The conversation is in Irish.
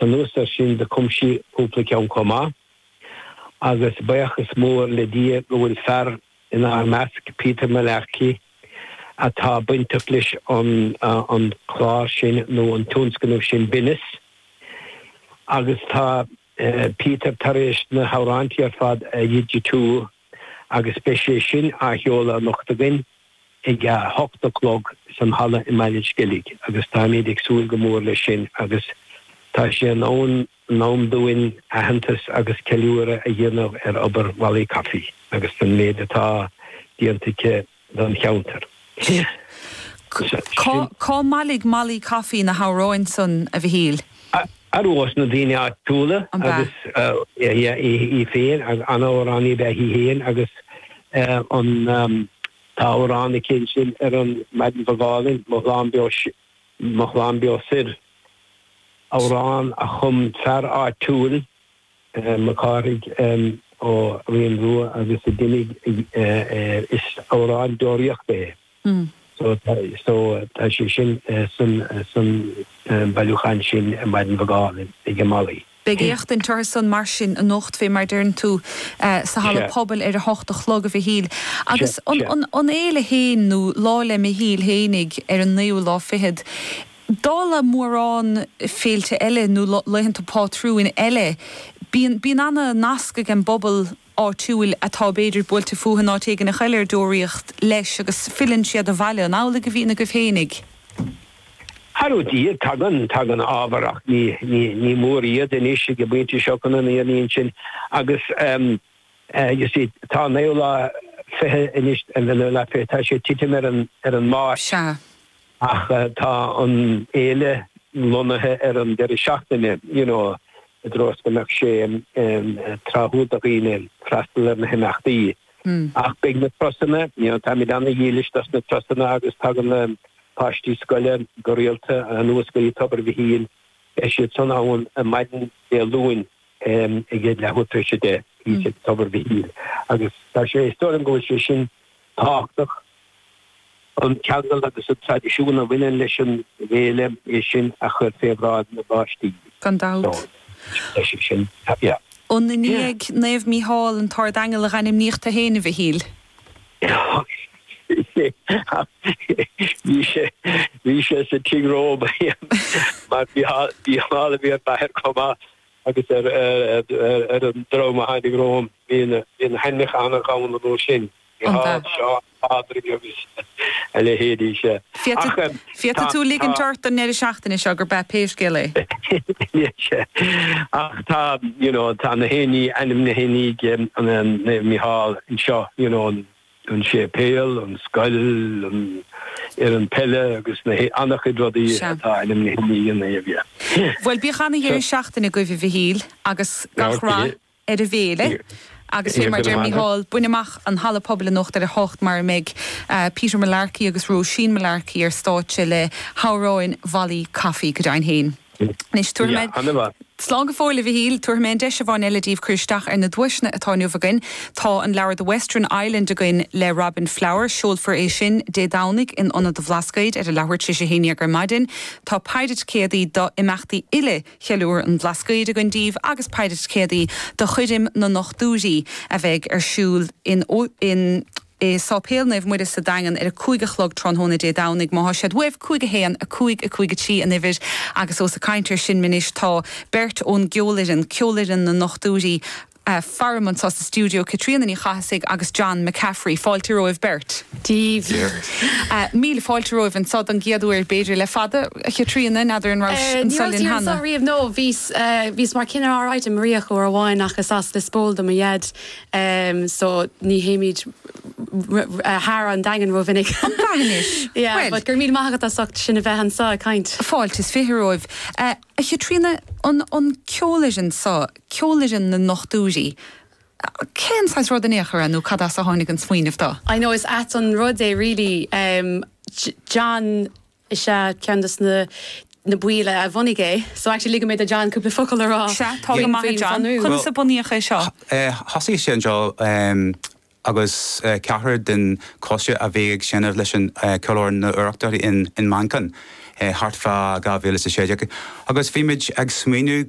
Anuas ar sin do cum sí cúpla ceann chomh maith, agus buíochas mór le Dia go bhfuil fear in ár measc, Peter Mullarkey, atá bainteach leis an clár sin nó an tionscnamh sin Binneas, agus tá Peter tar éis na hamhráintí ar fad a dhigitiú. agus beidh sé sin á sheoladh anocht againn ag a 8 a chlog san halla i mBaile an Sceilg agus táimid ag súil go mór leis sin agus tá sé in am dúinn aitheantas agus ceiliúradh a dhéanamh ar obair Mholly Coffey agus an méid atá déanta aici don cheantar. Is é sin. Cá mbailígh Molly Coffey na hamhráin san, a Mhichíl? Ar nós na daoine áitiúla, agus í féin an-amhránaí ab ea í féin, agus tá amhrán aici ansin ar an Maidin Bhog Álainn, Mo Shlán Beo, Mo Shlán Beo Soir, amhrán a chum fear áitiúil Mac Cárthaigh Ó Rionrua agus a d'imigh Is amhrán deoraíochta é so so tá sé sin san bailiúchán sin i Maidin Bhog Álainn ag Molly. Beidh éisteacht orthu san mar sin anocht fé mar deireann tú sa halla pobail ar a hocht a chlog, a Mhichíl. Agus an an fhéile féin nó Lá le Michíl fhéinig ar an naoú lá fichead, Dála mórán féilte eile nó laethanta pátrúin eile, bíonn ana-nasc ag an bpobal áitiúil atá b'fhéidir buailte fúthu in áit éigin thall ar deoraíocht leis agus filleann siad abhaile. An amhlaidh a bhíonn agaibh féinig Tagann siad, tagann tagann ábhar ach ní ní ní mór iad anois ag an bpointe seo chun an fhírinne a insint agus ehm eh you see tá naoú lá fiche anois, an naoú lá fiche tá sé titim ar an ar an Máirt. Sea. Ach tá an fhéile lonnaithe ar an deireadh seachtaine, you know, i dtreo is go mbeadh sé tráthúil do dhaoine freastal ar na himeachtaí. Ach beidh na turasanna, you know, táimid ana-dhílis dos na turasanna agus tagann na páistí scoile go rialta anuas go dtí Tobar Mhichíl. Beidh siad san ann maidin Dé Luain. ag a leathuair tar éis a deich, thíos ag Tobar Mhichíl, agus tá sé, is dóigh liom go bhfuil sé sin tábhachtach, an ceangal agus an traidisiún a bhaineann leis an bhféile, é sin a chur fé bhráid na bpáistí. Gan dabht. Tá sé sin, yeah. An i ndiaidh Naomh Mícheál, an tArdaingeal, a dhainmníodh tú fhéin, a Mhichíl? Is é, ach bhí sé, bhí sé sa tigh romham mar Mícheál a bhí ar m'athair chomh maith. agus ar an dream a tháinig romham bhí na hainmneacha an-dhomhanda dóibh sin, Micheál, Seán, Pádraig agus a leithéidí. Sea. Ach tá. Féadfaidh tú ligint ort don ndeireadh seachtaine seo gurb ea pé scéal é. Sea. Ach tá, you know, tá nach aon ní ainmnithe i ndiaidh Micheál anseo, you know. an séipéal, an scoil, an fhoireann peile agus na an-chuid rudaí atá ainmnithe i ndiaidh Naomh Micheál. Bhuel, bíodh an-dheireadh seachtaine agaibh, a Mhichíl, agus gach rath ar an bhféile. Agus fé mar a deir Micheál, bain amach an halla pobail anocht ar a hocht mar a mbeidh Peter Mullarkey agus Róisín Mullarkey ar stáitse le hamhráin Mholly Coffey. Go deimhin fhéin. Anois, tabharfaidh mé. Slán go fóill, a Mhichíl. Tabharfaidh mé an deis amháin eile daoibh cur isteach ar na duaiseanna atá inniu againn. Tá an leabhar The Western Island againn le Robin Flower. Seolfar é sin Dé Domhnaigh in Ionad an Bhlascaoid ar a leathuair tar éis a haon déag ar maidin. Tá péire ticéadaí do imeachtaí uile Cheiliúradh an Bhlascaoid againn daoibh agus péire ticéadaí do Choirm na nDochtúirí a bheidh ar siúl in i Sáipéal Naomh Muire sa Daingean ar a cúig a chlog tráthnóna Dé Domhnaigh. Má thá siad uaibh, 5 1, 5 5 3 an uimhir agus ós ag caint ar sin anois tá beirt ón gceolfhoireann, Ceolfhoireann na nDochtúirí, faram anseo sa stiúideo, Caitríona Ní Chathasaigh agus John McCaffrey. Fáilte romhaibh beirt. Dia ort. Míle fáilte romhaibh anseo don gcéad uair, b'fhéidir, le fada. A Chaitríona, n'fheadar an raibh sibh anseo linn cheana? Ní rabhas anseo riamh, no, bhíos, bhíos mar cinnire ar an Muirígh uair amháin ach is as Lios Póil do mo dhaid. em so ní théimid thar an Daingean rómhinic. An Daingean anois. Yeah, Bhuel. but go raibh míle maith agat as ucht sinn a bheith anseo ag caint. Fáilte is fiche romhaibh. A Chaitríona, an ceolfhoireann seo, Ceolfhoireann na nDochtúirí, cén saghas rud in aon chor é nó cad as a tháinig an smaoineamh dó? I know, is ait an rud é really, em John. is ea ceann de na baill a bhunaigh é. So actually ligfidh mé do John cúpla focal a rá Sea, tá go maith, a John. Conas a bunaíodh é seo? Thosaigh sé anseo agus ceathrar den choiste a bhí ag seinm leis an Cheolfhoireann na hEorpa in Manchain thart fá 2016 agus bhí muid ag smaoineamh go